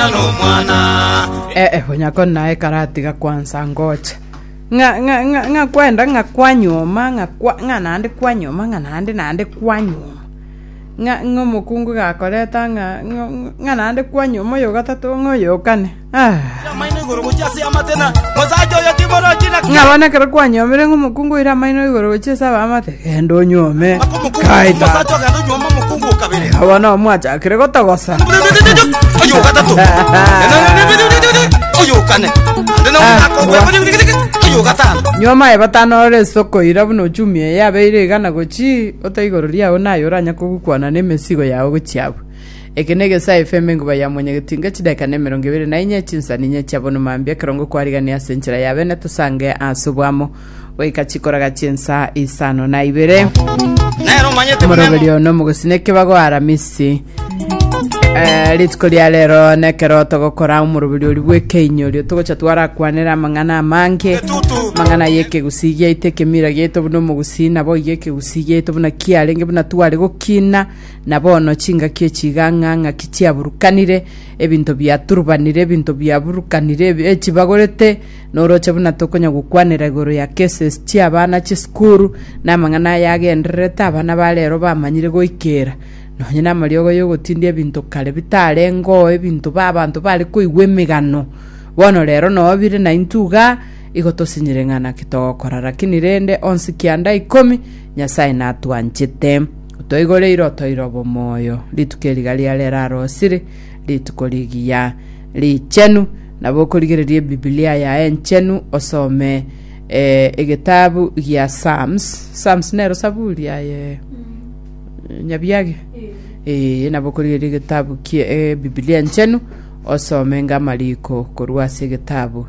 Omochenu Omwana. Eh, eh, onyako naye karatiga kwansa ngocha ng'a ng'a ng'a ng'a kwenda ng'a kwanyuma ng'a kwa ng'a nandi kwanyuma ng'a nandi nandi kwanyuma ng'a ng'a omokungu gakoreta ng'a ng'a ng'a nandi kwanyuma oyo gatatu ng'a oyokane ah Amaino igoro gochia ase amate na mosacha oyo timorochi na ng'a bonekere kwanyomire ng'a omokungu oire amaino igoro gochia ase abamate Genda onyuome kaita. Omosacha ogenda onyuoma omokungu o kabere. Iga bono mwachakire gotogosa. Oyo ogatatu. Oyo okane. Ande na omwaka ogwe. Oyo ogatano. Nyuoma ye batano ore esoko ira buna ochumi eye abeire iga na gochi ote igoro riao naye oranya kogukwana na emesigo yao gochia abwo. Eke negesae efembe enguba ya mwanyagetinga chideka na emerongo ebere na inye chinsani inye chia bonuma mambia ekerongo kwarigania ase enchera ya bene tosange ase obwamo goika chikoraga chi'ensaa isano na ibere Nere omanyete buna omoroberio one omogosini ekebago aramisi Eh, rituko ria rero nekero togokora omoroberio oria bw'ekeinyorio togocha twarakwanera amang'ana amange Etutu. amang'ana y'ekegusii giaito ekemira giaito buna omogusii nabo iga ekegusii giaito buna kiarenge buna tware gokina na bono chingaki echigang'a ng'aki chiaburukanire ebinto biaturubanire ebinto biaburukanire ebi- echibagorete Noroche buna tokonya gokwanera igoro ya cases chi'abana chisukuru, na amang'ana aya agendererete abana ba rero bamanyire goikera. Nonye namariogo y'ogotindia ebinto kare bitarengoo ebinto ba abanto bare koigwa emegano, bono rero noo bire naintwe iga igo tosinyire ng'a naki togokora. Rakini rende onsi kianda ikomi Nyasae natwanchete. Otoigore ira otoire obomoyo. Rituko eri iga riarera arosire, rituko rigiya, richenu, Nabo okorigereria Ebibilia yaye enchenu osome eh, egetabu gia Psalms. Psalms nero saburi aye eh, Nyabiage. Eh, nabo okorigereria egetabu kie eh, Bibilia enchenu osome nga amariko korwa ase egetabu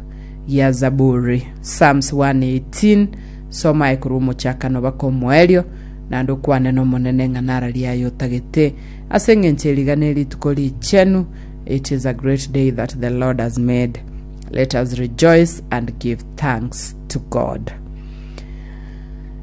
gia Zaburi. Psalms 118 soma aye korwa omochakano baka omoerio naende okwane n'Omonene ng'a nara riaye otagete ase eng'encho erigane rituko richenu It is a great day that the Lord has made. Let us rejoice and give thanks to God.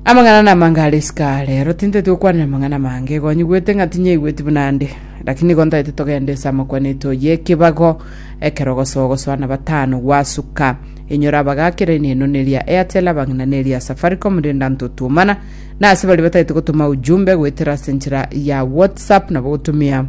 amang'ana namanga are isika rero tintaeti gokwanera amang'ana mange gonyigwete ng'a tinyaigweti buna ande lakini gontaeti togende ase amakwaneto y'ekebago ekero gosoa gosoa na batano gwasuka inyora abagakera ine eno neria airtel abang'ina neria safaricom renda ntotuomana na ase bari bataeti gotoma ujumbe goetera ase enchera ya whatsapp nabo gotumia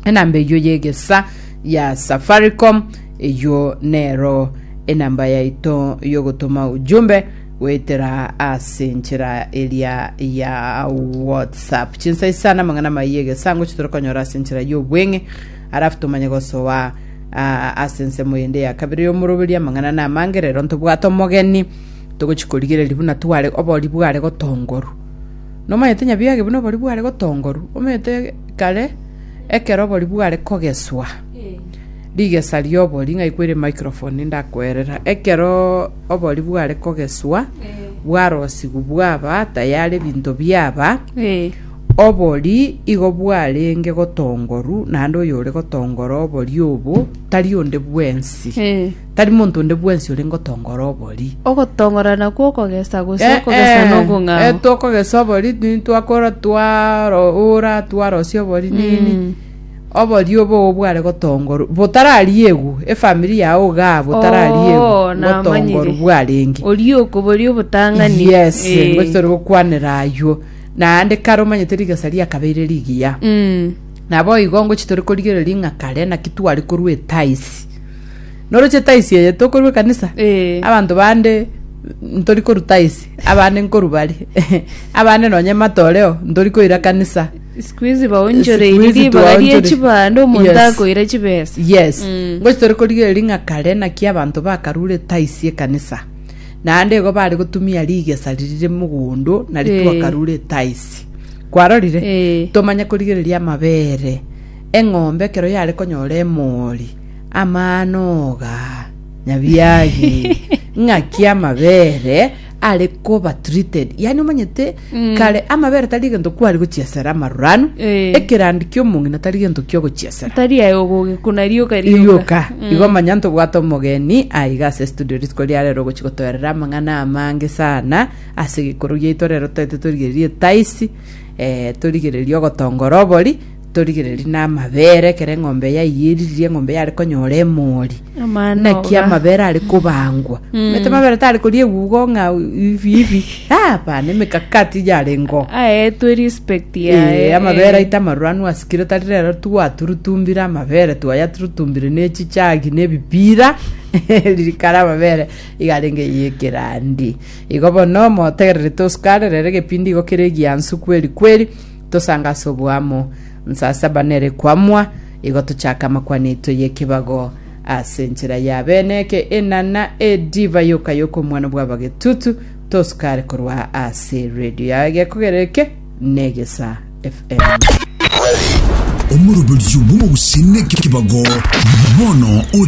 enamba eyio y'egesa ya Safaricom, eyio nero enamba yaito y'ogotoma ujumbe goetera ase enchera eria ya WhatsApp. Chinsa isana amang'ana amaya y'egesa ngochi torokonyora ase enchera y'obweng'e, arafu tomanye gosoa ah, ase ensemo yende ya kabere y'omoroberia amang'ana na amange, rero ntobwate omogeni togochi korigereria buna tware obori bware gotongoru Nomanyete nyabiage buna obori bware gotongoru omanyete kare ekero obori bware kogeswa, rigesa riobori ng'ai kwaire microphone ndakoerera, ekeroo obori bware kogeswa bwarosigwa bwaba tayari ebinto biaba Eh. obori igo bwarenge gotongoru naende oyore gotongora obori obo tari onde bwensi. Eh. Tari monto onde bwensi ore ngotongora obori. Ogotongora nakwo okogesa, gose Eh, okogesa eh, eh, nokong'ao. twakogesa obori ni- twakora twaro ora twarosia obori nini Mm. obori obo obware gotongorwa botarariegwa efamiri yao igaa botarariegwa Oo, namanyire. gotongorwa bwarenge Oria okoboria obotang'ani. yes Eh. ngochi tore gokwanera aywo naende kare omanyete rigesa riakabeire rigiya Mm. nabo igo ngochi tore korigereria ng'a kare naki tware korwa etaisi Noroche tithe eye tokorua ekanisa Eh. abanto bande ntori korwa tithe abande nkorwa bare abande nonye matoreo ntori koira kanisa siku hizi Siku baonchoreiri hizi ribaga tuwaonchore. rie chibando omonto Yes. akoira chibesa yes Mm. ngochi tore korigereria ng'a kare naki abanto bakarure tithe ekanisa naende igo bare gotumia rigesa ririre mogondo nari Eh. twakarure tithe kwarorire Eh. tomanye korigereria amabere eng'ombe ekero yare konyora emori Amanoga, nyabiagi, ng'aki amabere are koba treated. Yani omanyete Mm. kare amabere tari egento kwari gochiesera amaruranu, Eh. ekerandi ki'omong'ina tari gento kiogochiesera. tari aye ogogekuna rioka Irioka, igo manya ntobwate omogeni aiga ase studio rituko ria rero ogochi gotoerera amang'ana amange sana ase egekorwa giaito rero toete torigereria etaisi eh, torigereria ogotongora obori Torigererie namabere, ekero eng'ombe yaiyo eriririe eng'ombe yare konyora emori, Amano naki iga. amabere are kobangwa. Omanyete amabere tare koria egugo ng'a hivi hivi. Ah, hapana, emekakati yarengeo. aetwe respect Eh, yaye amabere aito amaruranu asikire tari rero twaturutumbire amabere twayaturutumbire ne chichagi ne ebipira riria kare amabere iga arenge yekerandi igo bono motegererete osukare rero egepindi igo kere egiansu kweri kweri Tosange ase oboamo. Saa saba nere kwamwa, igo tochake amakwana aito y'ekebago ase enchera ya bene eke enana edivai yoka y'okomwana bw'abagetutu tosukare korwa ase radio ya egekogerero eke n'egesa FM. Omoroberio bw'omogusii nekebago bono o